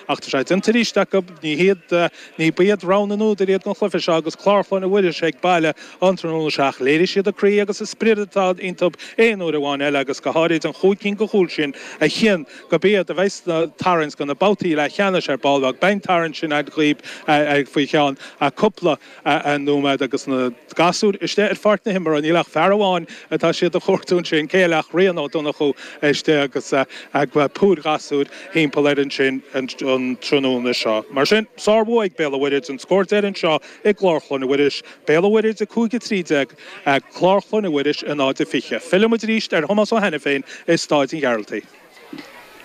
Ach tá sé déanta arís acu. Ní hiad, ní ba iad rogha na n-údar iad don chluife seo agus Clár Chlainne Mhuiris ag baile an tráthnóna seo ach léirigh siad an croí agus an spriod atá iontu aon uair amháin eile agus go háirid an chúig cinn de chúil sin a chinn go mba iad a bheadh sa tarraingt do na babhtaí leathcheannais ar ball beag beidh an tarraingt sin againn dhaoibh faoi cheann cúpla nóiméad agus na gasúir istigh ar pháirc na himeartha, níl ach fear amháin atá siad a chuartú ansin, cé eile ach Rian Ó Donnchú istigh agus púir ghasúr thimpeall air ansin an tráthnóna seo. Mar sin, sárbhua ag Béal an Mhuirthead, an scór deiridh anseo i gClár Chlainne Mhuiris, Béal an Mhuirthead 5-13, Clár Chlainne Mhuiris 0-20. Filleann muid arís ar Thomás Ó hAiniféin i Stáid an Ghearaltaigh.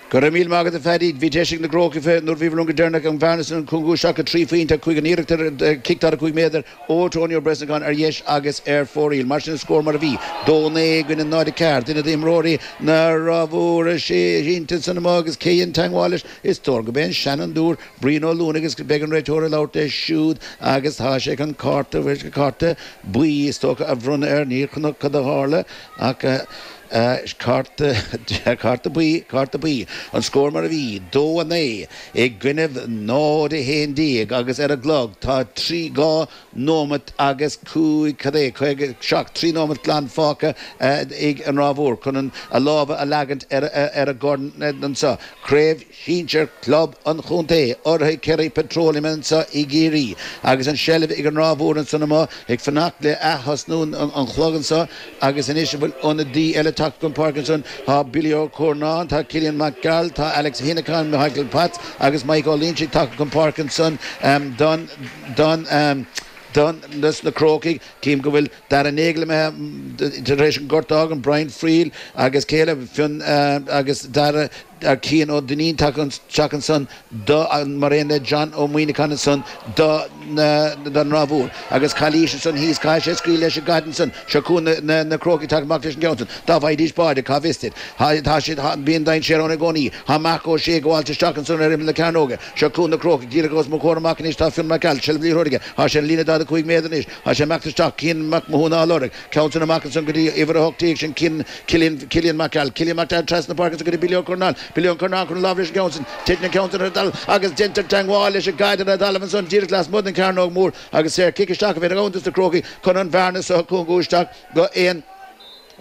Go raibh míle maith agat, a Phaddy. Bhí deis ag na gCrócaigh nuair a bhíobhair liom go deireanach an bhearna san a chúngú isteach go trí phointe ach chuaigh an iarracht ar chic daichead a cúig méadar ó Tony Ó Brosnacháin ar dheis agus ar fóraoil. Mar sin an scór mar a bhí, dó naoi i gcoinne náid a ceathair. Duine d'imreoirí na Rátha Móire sínte ansan amuigh agus cé dhein teangmháil leis? Is dóigh gurb é an seanfhondúir Brian Ó Luanaigh agus beidh an réiteoir ag labhairt leis siúd agus tá sé chun cárta, cárta buí is dócha a bhronnadh air. Ní chonac cad a tharla. Ach cárta buí, cárta buí, an scór mar a bhí, dó a naoi i gcoinnibh náid a haon déag agus ar an gclog tá trí dhá nóimeat agus cúig, cad é, caoga seacht, trí nóimeat glan fágtha ag an Ráth Mhór chun a lámha a leagaint ar an gcorn so, Craobh Sinsear Club an Chontae, urraithe Kerry Petroleum anso i gCiarraí agus an seilbh ag an Ráth Mhór ansan amuigh, ag fanacht le ath-thosnú an chlog anso agus anois an bhfuil ionadaí eile tagtha chun páirce ansan? Tá Billy Ó Curnáin, tá Cillian Mac Gearailt, tá Alex Hennigan, Michael Potts agus Maidhc Ó Loingsigh tagtha chun páirce ansan don don don dos na Crócaigh. Cím go bhfuil Dara Nagle imithe tar éis an gort a fhágaint Brian Friel agus cé eile, Fionn agus Dara. ar Chian Ó Duinnín tagtha isteach ansan do, mar aon le John Ó Muíneacháin ansan do, don Ráth Mhór, agus calaois ansan thíos, caithfidh sé scaoileadh leis an gcaid ansan, seo chugainn na Crócaigh ag teacht amach leis an gceann san, dá bhfaighdís báide, cá bhfios duit. Tá, tá siad, tá, bíonn dainséar ann i gcónaí. Tá Marc Ó Sé ag gabháilt isteach ansan ar imeall na cearnóige, seo Cuan na Crócaigh, díreach os mo chomhair amach anois tá Fionn Mac Gearailt, seilbh liathróid aige, tá sé ar an líne 45 méadar anois, tá sé ag imeacht isteach, Cian Mac Mathúna á lorg, Ceann san amach ansan go dtí uimhir a hocht déag sin é Cillian Mac Gearailt, Cillian Mac Gearailt trasna na páirce ansan go dtí Billy Ó Curnáin, Billy Ó Curnáin chun láimh leis an gceann san. Titeann an ceann san ar an dtalamh agus deintear teangmháil leis an gcaid ar an dtalamh ansan díreach lasmuigh den chearnóg mór agus saor cic isteach a bhíonn ann dos na Crócaigh chun an bhearna so a chúngú isteach go aon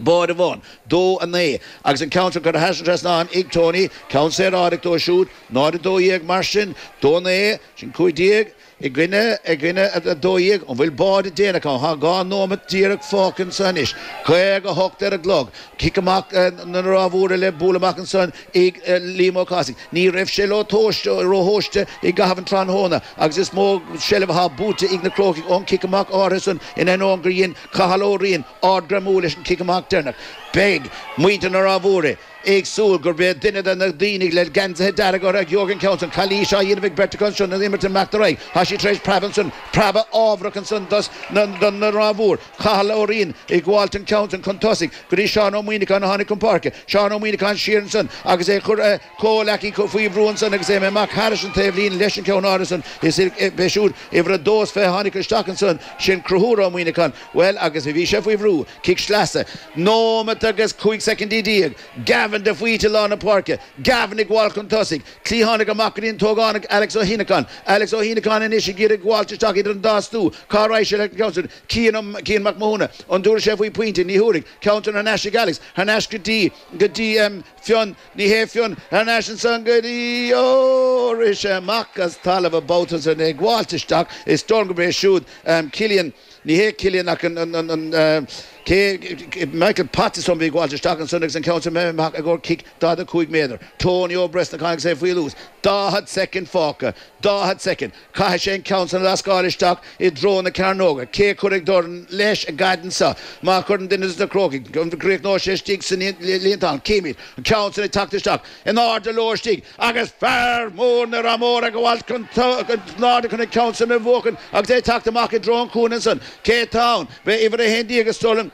bháide amháin. Dó a naoi agus an ceann san curtha thar an trasnán ag Tony, ceann saoráideach dó siúd. Náid a dó dhéag mar sin. Dó a naoi, sin cúig déag. I gcoinne, I gcoinne a 12, An bhfuil báide déanach ann? Tá dhá nóimeat díreach fágtha anso anois. 58 ar an gclog. Cic amach na Ráth Mhóire le bualadh amach anso ag Liam Ó Cathasaigh. Ní raibh sé leo tomhaiste, róthomhaiste i gcaitheamh an tráthnóna agus is mó seilbh atá buaite ag na Crócaigh ón gcic amach áirithe san in ainneoin gur dhein Cathal Ó Riain ardghreamú leis an gcic amach deireanach. Beidh muintir na Ráth Mhóire. ag súil gurb é duine de na daoine le geansaithe dearga orthu a gheobhaidh an ceann san. Calaois á dhéanamh ag beirt acu ansin, an imirt ag imeacht ar aghaidh. Tá sé tar éis preabadh ansan, preabadh ámharach ansin dos na na na Ráth Mhór. Cathal Ó Riain ag gabháilt an ceann san chun tosaigh, go dtí Seán Ó Muíneacháin a tháinig chun páirce. Seán Ó Muíneacháin siar ansin agus é ag cur a comhleacaí faoi bhrú ansin agus amach thairis an taobhlíne leis an ceann áirithe san. Is é siúd uimhir a dó is fiche a tháinig isteach ansin, sin Cruthúr Ó Muíneacháin. Bhuel, agus a bhí sé faoi bhrú, cic sleasa, nóimeat agus 15 soicindí, Gavin de Faoite i lár na páirce, Gavin ag gabháilt chun tosaigh, cliathánaigh amach go dtí an t-ógánach Alex Ó hIonacháin, Alex Ó hIonacháin anois ag iarraidh gabháilt isteach idir an dá stua, cá raghadh sé leis an cheann sin, Cian, Cian Mac Mathúna, an dtabharfaidh sé faoi pointe, ní thabharfaidh, ceann san thar n-ais ag Alex, thar n-ais go dtí, go dtí ehm Fionn, ní hé Fionn, thar n-ais ansan go dtí, ó rith sé amach as talamh an babhta san, ag gabháilt isteach is dóigh liom gurb é siúd ehm Cillian, Ní hé Cillian ach an, an, an, an, cé, Michael Potts a bhí ag gabháilt isteach ansin agus an ceann sin imithe amach i gcomhair cic 45 méadar. Tony Ó Brosnacháin agus é faoi luas. 40 soicind fágtha. 40 soicind. Caithfidh sé an ceann sin a lascáil isteach i dtreo na cearnóga. Cé cuirfidh dorn leis an gcaidn seo? Má chuireann duine de na Crócaigh, an gcríochnóidh sé istigh sa líontán? Cífimid. An ceann sin ag teacht isteach. in airde leo istigh agus fear mór na Ráth Mhóire ag gabháilt in airde chun an ceann san a bhuachan agus é ag teacht amach i dtreo an chúinne ansan. Cé tá ann? B'é uimhir a haon déag is dóigh liom.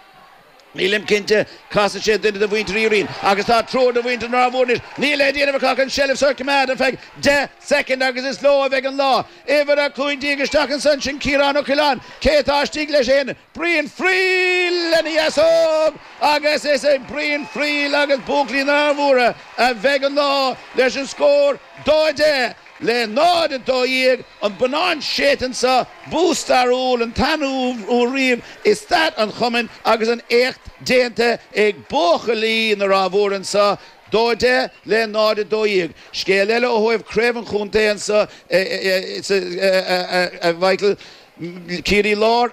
Nílim cinnte. Casann sé duine de mhuintir Uí Riain agus tá triúr de mhuintir na Ráth Mhóire anois. Níl le déanamh acu ach an seilbh so a choimeád ar feadh deich soicind agus is leo a bheidh an lá. Uimhir a cúig déag isteach ansan, sin Ciarán Ó Coileáin. Cé tá istigh leis féin? Brian Friel lena dheasóg agus is ag Brian Friel agus Buachaillí na Ráth Mhóire a bheidh an lá leis an scór dó 10 le 0, 12, an bonnán séite anso, bua stairiúil, an tarna bua riamh i stair an chumainn agus an-éacht déanta ag Buachaillí na Ráth Mhóire anso dó 10 le 0, 12. Scéal eile ó thaobh Craobh an Chontae anseo a Mhichael. Ciarraí Láir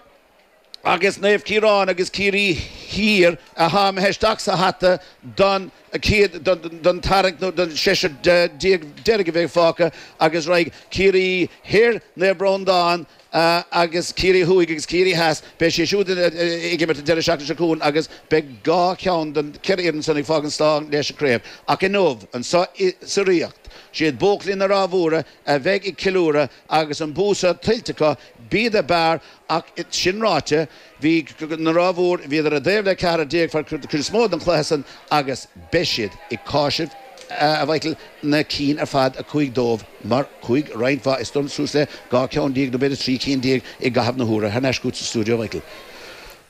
agus Naomh Ciarán agus Ciarraí Thiar a chaitheamh isteach sa hata don chéad don tarraingt nó don seisear déag deiridh a bheidh fágtha agus raghaidh Ciarraí Thoir, Naomh Breandán agus Ciarraí Thuaidh agus Ciarraí Theas, beidh siad siúd ag imirt an deireadh seachtaine seo chugainn agus beidh dhá cheann den cheithre fhoireann san ag fágaint slán leis an chraobh. Ach inniu, anseo sa Ríocht, is iad buachaillí na Ráth Mhóire a bheidh ag ceiliúradh, Agus an bua san tuillte acu, b'iad ab fhearr ach, sin ráite, bhí an Ráth Mhór, bhíodar i dtaobh le ceathrar déag fear, cuid is mó, den chluiche san agus beidh siad ag cásamh, a Mhichíl, na cinn ar fad a chuaigh dóibh mar chuaigh, roinnt mhaith, is dóigh liom, suas le dhá cheann déag nó b'fhéidir trí cinn déag i gcaitheamh na huaire. Thar n-ais chugat sa stiúideo, a Mhichíl.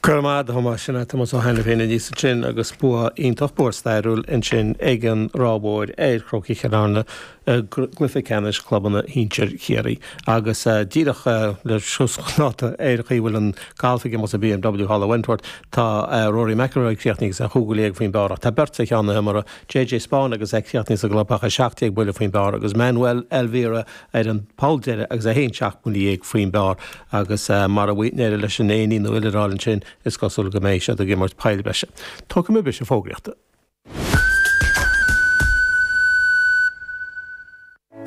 Go raibh maith agat, a Thomáis. Sin é Tomás Ó hAiniféin aníos ansin agus bua iontach, bua stairiúil ansin ag an Ráth Mhór ar Chrócaigh Chill Airne i gcluiche ceannais clubanna shinsir Chiarraí agus díreach le suas chun dáta ar an gcaoi a bhfuil an galf ag imeacht sa BMW thall i Wentworth, tá Rory McIlroy críochnaithe agus é chúig bhuile dhéag faoin bpár ach tá beirt ar cheann an iomaire, JJ Spaun agus é críochnaithe sa gclubtheach 17 buile faoin bpár agus Manuel Elvira ar an poll deireadh agus é fhéin seacht mbuile dhéag faoin bpár agus mara n-éireoidh leis an éinín nó iolar a fháil ansin is cosúil go mbeidh siad ag imirt poill bhreise. Tógfaidh muid briseadh fógraíochta.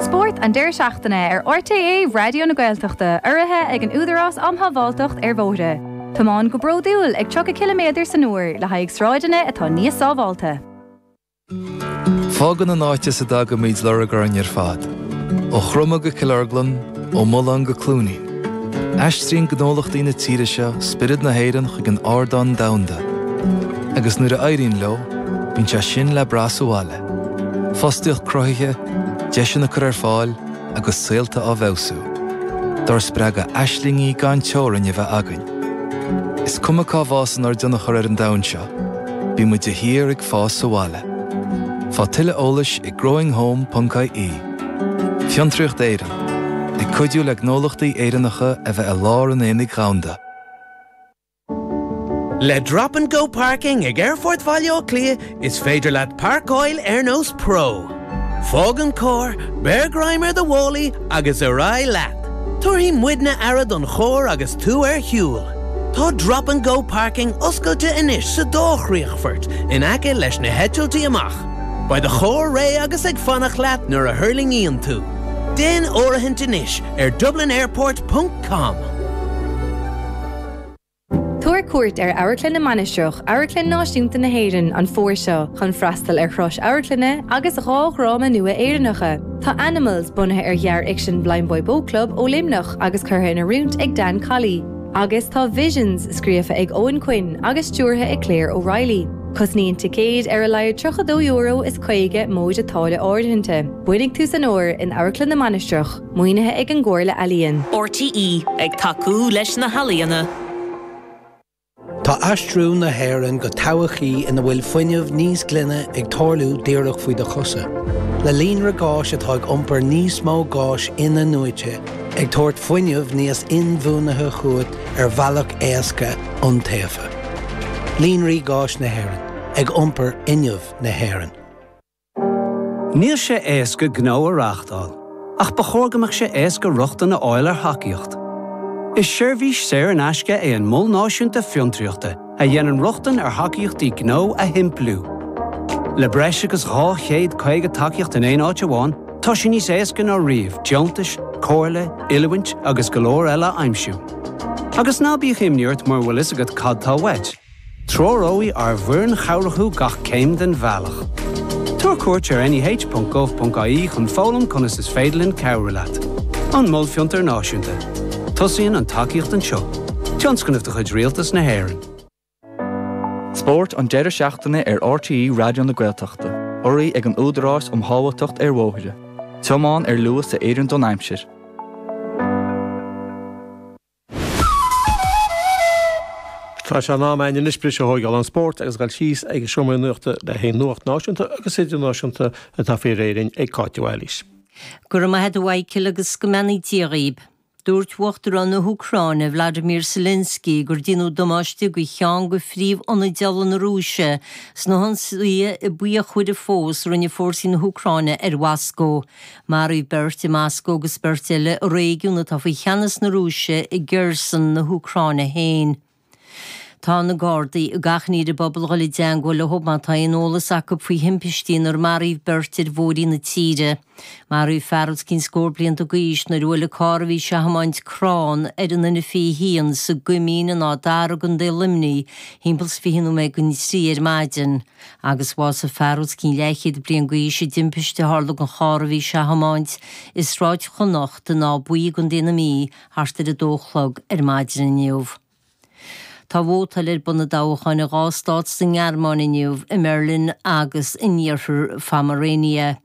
Spórt an deireadh seachtaine ar RTÉ Raidió na Gaeltachta urraithe ag an Údarás Um Shábháilteacht ar Bhóithre. Tiomáin go bródúil ag 30 ciliméadar san uair le haghaidh sráideanna atá níos sábháilte. Fágann an áit as a dtagaimid lorg orainn ar fad, ó Chromadh go Cill Orglan, ó Mullán go Cluain Aodha. Aistríonn gnólachtaí na tíre seo spiorad na hÉireann chuig an ardán domhanda, agus nuair a éiríonn leo, bíonn sé sin le brath sa bhaile, fostaíocht cruthaithe, deiseanna curtha ar fáil agus saolta á bhfeabhsú, dár spreagadh aislingí gan teorainn a bheith againn. Is cuma cá bhfásann ár dtionchar ar an domhan seo, bíonn muid de shíor ag fás sa bhaile. Faigh tuilleadh eolais ag growinghome.ie. Fiontraíocht Éireann, ag cuidiú le gnólachtaí Éireannacha a bheith i lár an aonaigh dhomhanda. Le Drop and Go Parking ag Aerfort Bhaile Átha Cliath is féidir leat páirceáil ar nós pro. Fág an carr, beir greim ar do mhálaí agus ar aghaidh leat! Tabharfaidh muidne aire don charr agus tú ar shiúl. Tá Drop and Go Parking oscailte anois sa dá chríochfort in aice leis na heitiltí amach. Beidh do charr réidh agus ag fanacht leat nuair a thuirlingíonn tú. Déan áirithint anois ar dublinairport ponc com. Tabhair cuairt ar Amharclann na Mainistreach, Amharclann Náisiúnta na hÉireann, an fómhar seo chun freastal ar shraith amharclainne agus dhá dhráma nua Éireannacha. Tá Animals, bunaithe ar ghearrfhicsean Blindboy Boatclub, ó Luimneach agus curtha in oiriúint ag Dan Colley. Agus tá Visions scríofa ag Eoghan Quinn agus stiúrtha ag Claire O'Reilly. Cosnaíonn ticéid ar a laghad €32 is 50 móide táille áirithinte. Bainfidh tú san uair in Amharclann na Mainistreach, maoinithe ag an gComhairle Ealaíon. RTÉ, ag tacú leis na healaíona. Tá aistriú na hÉireann go todhchaí ina bhfuil fuinneamh níos glaine ag tarlú díreach faoi do chosa. Le líonra gáis atá ag iompar níos mó gáis in-athnuaite, ag tabhairt fuinneamh níos inbhuanaithe chugat ar bhealach éasca iontaofa. Líonraí Gáis na hÉireann, ag iompar fhuinneamh na hÉireann. Níl sé éasca gnó a reáchtáil, ach ba chóir go mbeadh sé éasca rochtain a fháil ar thacaíocht. Is seirbhís saor in aisce é an Mol Náisiúnta Fiontraíochta, a dhéanann rochtain ar thacaíochtaí gnó a shimpliú. Le breis agus 250 tacaíocht in aon áit amháin, tá sé níos éasca ná riamh deontais, comhairle, oiliúint agus go leor eile a aimsiú. Agus ná bíodh imní ort mura bhfuil fhios agat cad tá uait, treoróidh ár bhfoireann chabhrach thú gach céim den bhealach. Tabhair cuairt ar neh.gov.ie chun foghlaim conas is féidir linn cabhrú leat. An Mol Fiontar Náisiúnta. Tosaíonn an tacaíocht anseo. Tionscnamh de chuid Rialtas na hÉireann. Spórt an deireadh seachtaine ar RTÉ Raidió na Gaeltachta, urraithe ag an Údarás um Shábháilteacht ar Bhóithre, tiomán ar luas a oireann don aimsir. Tá sé in am againn anois briseadh a thógáil ón spórt agus a dhul síos ag an seomra nuachta le haghaidh an nuacht náisiúnta agus idirnáisiúnta atá faoi réir dúinn ag Cáit de Bhailís. Go raibh maith agat a Mhichael agus go mbeannaí Dia dhaoib. Dúirt Uachtarán na hÚcráine, Vladimir Zelensky, gur déanadh damáiste go cheann de phríomh-ionaid ola na Rúise sna hionsaithe ba fíochmhaire fós a rinne fórsaí na hÚcráine ar Mhoscó. Maraíodh beirt i Moscó agus beirt eile i réigiún atá faoi cheannas na Rúise i Kherson na hÚcráine féin. Tá na Gardaí ag achainí ar an bpobal a dhul i dteangmháil leo má tá aon eolas acu faoi thimpistí inar maraíodh beirt ar bhóithrí na tíre. Maraíodh fear os cionn scór blianta d'aois nuair a bhuail an carr a bhí sé a thiomáint crann ar an N21 sa gCoimín in Áth Dara i gContae Luimnigh thimpeall is fiche nóiméad go dtí a trí ar maidin agus bhásaigh fear os cionn leathchéad bliain d'aois i dtimpiste a tharla dhon charr a bhí sé a thiomáint i Sráid Chonnacht in Áth Buí i gContae na Mí thart ar a dó a chlog ar maidin inniu. Tá vótáil ar bun i dtoghcháin i dhá stát sa nGearmáin inniu, i mBeirlín agus in Iarthar Phomerania.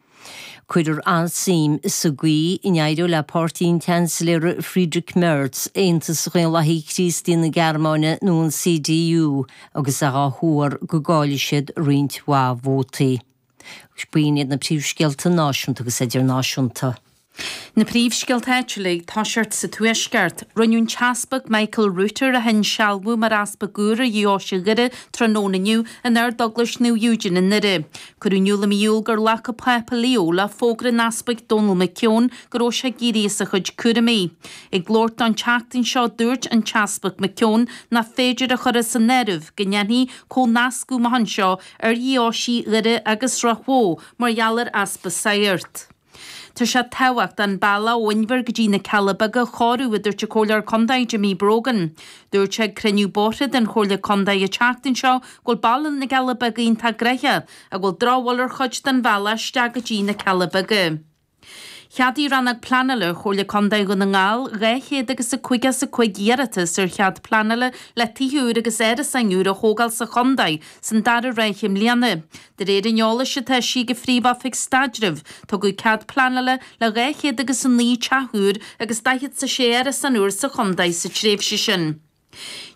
Cuirfear an-suim sa gcaoi a n-éireoidh le páirtí an tSeansailéara Friedrich Merz, Aontas Dhaonlathaithe Críostaí na Gearmáine nó an CDU, agus é á thuar go gcaillfidh siad roinnt mhaith vótaí. B'in iad na príomhscéalta náisiúnta agus idirnáisiúnta. Na príomhscéalta áitiúla, i dtoiseacht sa Tuaisceart. Rinneadh an tEaspag Michael Router a hinsealbhú mar Easpag úr ar Dheoise Dhoire tráthnóna inniu in Ardeaglais Naomh Eugene i nDoire. Cuireadh in iúl i mí Iúil gur ghlac an Pápa Leo le fógra an Easpaig Donal McKeown go raibh sé ag éirí as a chuid cúraimí. Ag labhairt dó an tseachtain seo dúirt an tEaspag McKeown nach féidir a chur as an áireamh go ndéanfaí comhnascadh amach anseo ar Dheoisí Dhoire agus Ráth Bhoth mar gheall ar easpa sagart. Tá sé tábhachtach an bealach ó Inbhear go dtí na Cealla Beaga a chóiriú, a dúirt an Comhairleoir Contae Jimmy Brogan. Dúirt sé ag cruinniú bóithre den Chomhairle Contae an tseachtain seo go bhfuil bealach na gCealla Beaga iontach gnoitheach ach go bhfuil drochbhail ar chuid den bhealach isteach go dtí na Cealla Beaga. Cheadaigh Rannóg Pleanála Chomhairle Contae Dhún na nGall dhá chéad agus caoga 's a cúig iarratas ar chead pleanála le tithe úr agus árasáin úr a thógáil sa chontae san dara ráithe i mbliana. De réir an eolais atá eisithe ag an Phríomh-Oifig Staidrimh, tugadh cead pleanála le dhá chéad agus a naoi teach úr agus daichead 's a sé árasán úr sa chontae sa tréimhse sin.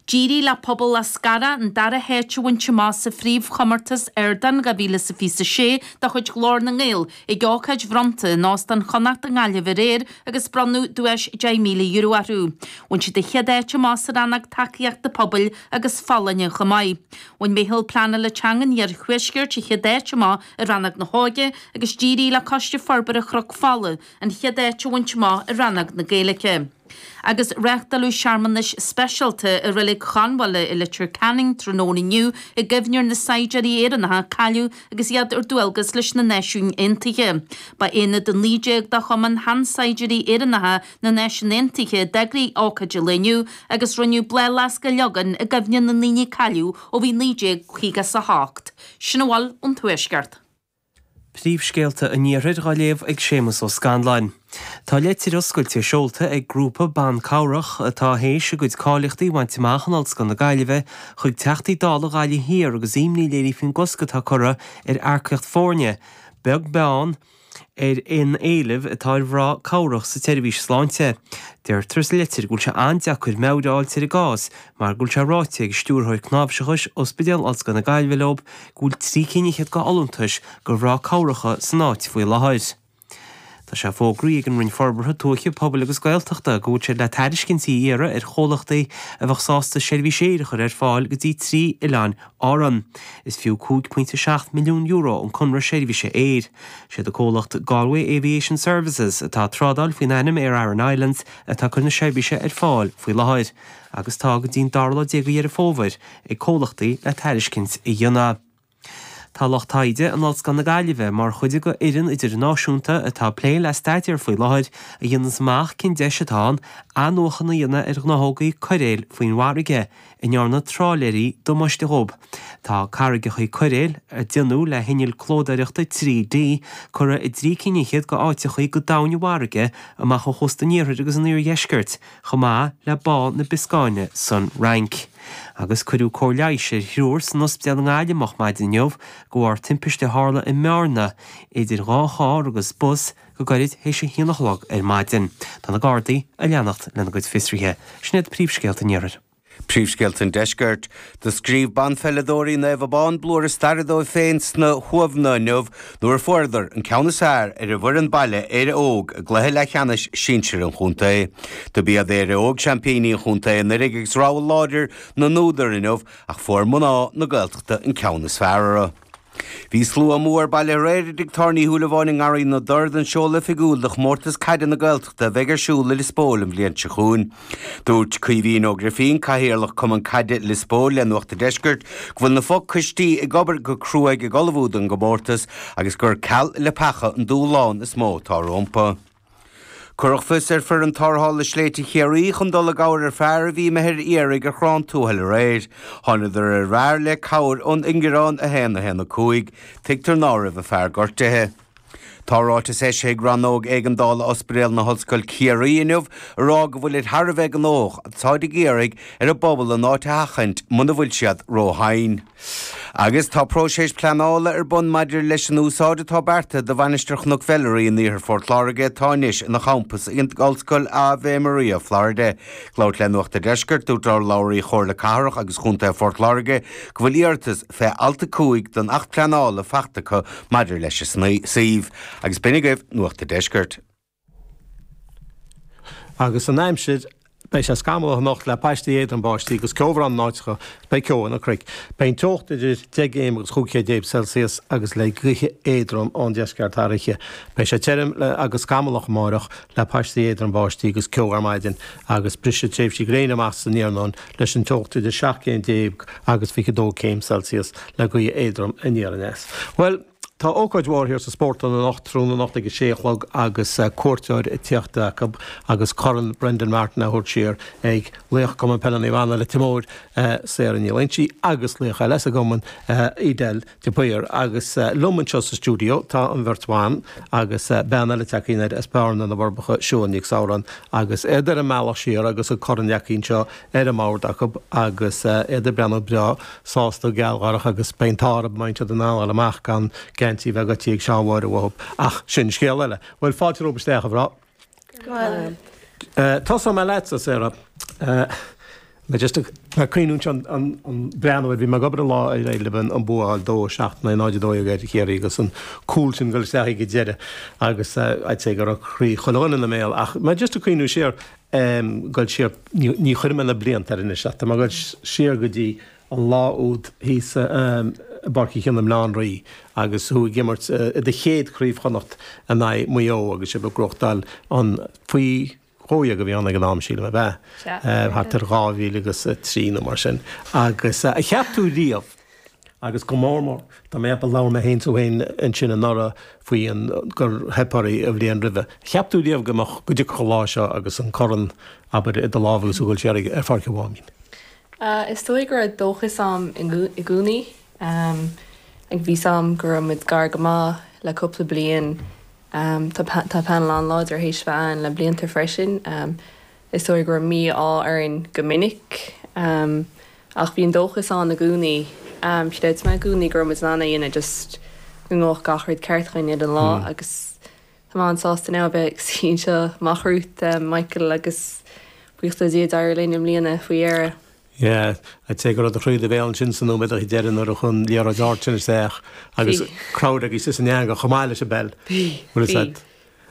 D'éirigh le Pobal Eascarrach an dara háit a bhaint amach sa phríomhchomórtas Ardán 2026 de chuid Ghlór na nGael ag ócáid bhronnta in Óstán Chonnacht i nGaillimh aréir agus bronnadh duais €10,000 orthu. Bhain siad an chéad áit amach sa rannóg Tacaíochta Pobail agus Folláine chomh maith. Bhain Meitheal Pleanála Teanga an Iarthuaiscirt an chéad áit amach i rannóg na hÓige agus d'éirigh le Coiste Forbartha Chnoc Fola an chéad áit a bhaint amach i rannóg na Gaeilge. agus reáchtáladh searmanais speisialta i Reilig Chonbháil i Leitir Ceanainn tráthnóna inniu i gcuimhne ar na saighdiúirí Éireannacha a cailleadh agus iad ar dualgas leis na Náisiúin Aontaithe. Ba aonad 19 de Chumann Sheansaighdiúirí Éireannacha na Náisiún Aontaithe a d'eagraigh ócáid an lae inniu agus rinneadh bláthfhleasc a leagan i gcuimhne na ndaoine a cailleadh ó bhí 1958. Sin a bhfuil ón Tuaisceart. Príomhscéalta an Iarthair dhá léamh ag Séamus Ó Scanláin. Tá leitir oscailte seolta ag grúpa ban cabhrach atá théis a gcuid cáilíochtaí a bhaint amach in Ollscoil na Gaillimhe chuig Teachtaí Dála Ghaillimh Thiar agus imní léirithe faoin gcosc atá curtha ar earcaíocht foirne beag beann ar aon éileamh atá ar mhná cabhrach sa tseirbhís sláinte. Deirtear sa leitir go bhfuil sé an-deacair meabhair a fháil ar an gcás mar go bhfuil sé ráite ag Stiúrthóir Cnáimhseachais Ospidéal Ollscoil na Gaillimhe leo go bhfuil trí cinn fhichead go fholúntais go mhná cabhracha san áit faoi láthair. Tá sé fógraithe ag an Roinn Forbartha Tuaithe, Pobail agus Gaeltachta go bhfuil siad le tairiscintí a iarraidh ar chomhlachtaí a bheadh sásta seirbhís aeir a chur ar fáil go dtí trí oileáin Árann. Is fiú €5.7 milliún an conradh seirbhíse aeir. Siad an comhlacht Galway Aviation Services, atá ag trádáil faoin ainm Aer Arann Islands, atá ag cur na seirbhíse ar fáil faoi láthair. agus tá go dtí'n dara lá déag de Dheireadh Fómhair ag comhlachtaí le tairiscint a dhéanamh. Tá lucht taighde in Ollscoil na Gaillimhe mar chuid go fhoireann idirnáisiúnta atá ag plé le staidéar faoi láthair a dhéanfas amach cén deis atá ann athnuachan a dhéanamh ar ghnáthógaí coiréil faoin bhfarraige a ndearna trálaeirí damáiste dhóibh. Tá carraigeachaí coiréil, a déanadh le hinnill clódóireachta 3D, curtha i dtrí cinn fhichead go áiteachaí go domhain i bhfarraige amach ó chósta an iarthair agus an iardheiscirt, chomh maith le Bá na Bioscáine san Fhrainc, agus cuireadh cóir leighis ar thriúr san ospidéal i nGaillimh moch maidin inniu de bharr timpiste a tharla i mBearna idir dhá charr agus bus go gairid théis a haon a chlog ar maidin. Tá na Gardaí ag leanacht lena gcuid fiosruithe. Sin iad príomhscéalta an iarthair. Príomhscéalta an Deiscirt. Do scríobh banpheileadóirí Naomh Abán blúire staire dóibh féin sna hUamhanna inniu nuair a fuaireadar an ceann is fearr ar an bhfoireann baile Éire Óg i gcluiche leathcheannais sinsir an chontae. Dob iad Éire Óg seaimpíní an chontae anuiridh agus rogha láidir na n-údar inniu ach fuair mná na Gaeltachta an ceann is fearr orthu. Bhí slua mór bailithe aréir i dTigh Tábhairne Uí Shúilleabháin i nGarraí na dTor don seoladh oifigiúil do Chomórtas Caide na Gaeltachta a bheidh ar siúl i Lios Póil an bhliain seo chugainn. Dúirt Caoimhín Ó Grifín, Cathaoirleach Cumann Caide Lios Póil le Nuacht an Deiscirt go bhfuil na fo-choistí ag obair go cruaidh ag ullmhú don gcomórtas agus gur ceal leapacha an dúshlán is mó atá rompu. Cuireadh fios ar foireann tarrthála Sléibhte Chiarraí chun dul i gcabhair ar fear a bhí imithe ar iarraidh ar Chorrán Tuathail aréir. Thánadar ar an bhfear le cabhair ón ingearán 1 1 5. Tuigtear ná raibh an fear gortaithe. Tá ráiteas eisithe ag Rannóg Éigeandála Ospidéal na hOllscoil Chiarraí inniu a rá go bhfuilid thar a bheith gnóthach, táid ag iarraidh ar an bpobal an áit a sheachaint muna bhfuil siad róthinn. agus tá próiseas pleanála ar bun maidir leis an úsáid atá beartaithe do Mhainistir Chnoc Mheilearaí in Iarthar Phort Láirge atá anois ina champas ag an Ollscoil Ave Maria, Florida. Ag labhairt le Nuacht a' Deiscirt, dúirt urlabhraí Chomhairle Cathrach agus Chontae Phort Láirge go bhfuil iarratas fé alt 5 den Acht Pleanála fachta acu maidir leis an suíomh, agus b'in agaibh Nuacht a' Deiscirt. Agus an aimsir? Beidh sé scamallach anocht le paistí éadrom báistí agus ceobhrán in áiteacha is beidh ceo ar na cnoic. Beidh an teocht idir deich gcéim agus chúig chéim déag Celsius agus le gaoithe éadrom ón deisceart thar oíche. Beidh sé tirim agus scamallach amáireach le paistí éadrom báistí agus ceo ar maidin agus brisfidh tréimhsí gréine amach san iarnóin leis an teocht idir seacht gcéim déag agus fiche dó céim Celsius le gaoth éadrom aniar aneas. Bhuel! Tá ócáid mhór thiar sa Spórtlann anocht, tráthnóna anocht ag a sé a chlog agus cuairteoir ag tíocht acu agus Corn Brendan Martin á thabhairt siar ag laoch Cumann Peile Naomh Anna, Leitir Móir, Sarah Ní Loingsigh agus laoch eile sa gcumann, Edel de Paor. Agus liom anseo sa stiúideo tá an bheirt bhan agus bean eile tagtha anoir as Bearna, na bhForbacha, Siún Nic Samhráin agus iad ar an mbealach siar agus an corn leagtha anseo ar an mbord acu agus iad ag breathnú breá, sásta, gealgháireach agus baint arb maith siad in anall amach gan geintí bheith ag oti ag Seán Mháire uathu. Ach sin scéal eile. Bhuel, fáilte romhaibh isteach, a mhná. Go raibh maith. Tosóidh mé leat, a Sarah. Mé just ag cuimhneamh anseo ag breathnú ar, bhí mé ag obair an lá ar aghaidh le bheith an buachaill dó, seacht in aghaidh náid a dó dhéag ar Chiarraí, agus an cúl sin ag dul isteach ag an deireadh agus, I'd say, go raibh croí chuile dhuine ina mbéal. Ach mé just ag cuimhneamh siar, ag dul siar, ní chuirfidh mé na blianta air anois leat, tá mé ag dul siar go dtí an lá úd thíos i bPáirc Uí Chionnaith i mBleá an Rí agus thú ag imirt i do chéad Chraobh Chonnacht in aghaidh Mhaigh Eo agus sibh ag gnóthachtáil an, faoi dhó dhéag a bhí ann ag an am sílim, ab ea? thart ar dhá mhíle agus trí nó mar sin agus ar cheap tú riamh? agus go mór mór dá mbeadh a labhair mé féin is tú féin ansin anuraidh faoin gur theip oraibh an bhliain roimhe. Cheap tú riamh go mbeadh go dtiocfadh an lá seo agus an corn, abair, i do lámh agus a dhul siar ar Pháirc an Mháimín? Is dóigh go raibh dóchas a'm i gcónaí. Like bhí's a'm go raibh muid gar go maith le cúpla bliain. Tá paineal an-láidir théis bheith a'ainn le blianta freisin. Is dóigh go raibh mí-ádh orainn go minic. Ach bhí an dóchas ann i gcónaí. Chreid mé i gcónaí go raibh muid in ann é a dhéanamh, just go ngabhadh gach rud ceart againn ar an lá. Agus tá mé an-sásta anois a bheith ag suí anseo amach romhat, Michael agus buíochas le Dia, d'éirigh linn i mbliana faoi dheireadh. Yeah. I'd say go raibh do chroí i do bhéal ansin sna nóiméadachaí deiridh nuair a chuir an liathróid ard sin isteach agus crowd agaibhse san eangach chomh maith leis an bpeil. Bhí, bhí.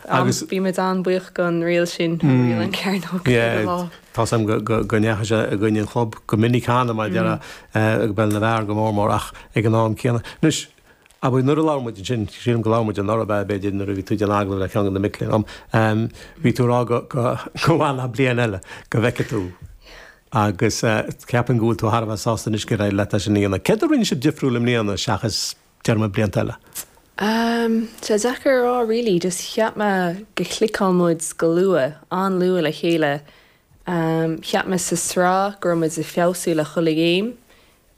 Agus. Bhí muid an-bhuíoch don riail sin, an riail an cearnóg caithfidh mé a rá. Tá's a'm go ndeachaigh sé i gcoinne an chlub go minic cheana, mar a dearfá, i bpeil na bhfear go mór mór ach ag an am céanna. Anois, abair, nuair a labhair muid ansin, sílim go labhair muid anuraidh, ab ea, b'fhéidir, nuair a bhí tú ag déanamh agallamh le ceann de na mic léinn dom, bhí tú ag rá go bhfanfá leat bliain eile go bhfeicfeadh tú agus cheapfainn go bhfuil tú thar a bheith sásta anois gur éirigh leat é sin a dhéanamh. Céard a rinne sibh difriúil i mbliana seachas déarfá blianta eile? Amm, tá deacair a rá really, just cheap mé go chliceáil muid go luath, an-luath le chéile. Amm, cheap mé sa sraith go raibh muid ag feabhsú le chuile ghéim,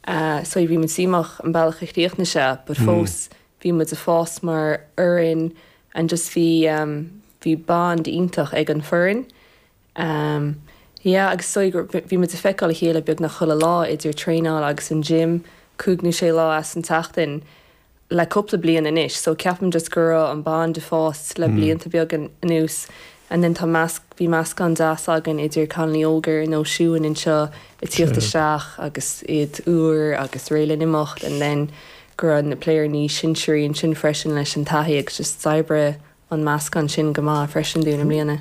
ahh, so bhí muid díomách an bealach a chríochnaigh sé but fós bhí muid ag fás mar fhoireann and just bhí, amm, bhí bond iontach ag an bhfoireann. Am, yeah agus is dóigh gur, bhí muid ag feiceáil a chéile beagnach chuile lá idir traenáil agus an gym, cúig nó sé lá as an tseachtain le cúpla bliain anois so ceapaim just go raibh an bond ag fás le blianta beaga anuas and then tá measc, bhí meascán deas againn idir cailíní óga ar nós Siúan anseo ag tíocht isteach agus iad úr agus réidh le n-imeacht and then go raibh na players níos sinsearaí ansin freisin leis an taithí agus just d'oibrigh an meascán sin go maith freisin dúinn i mbliana.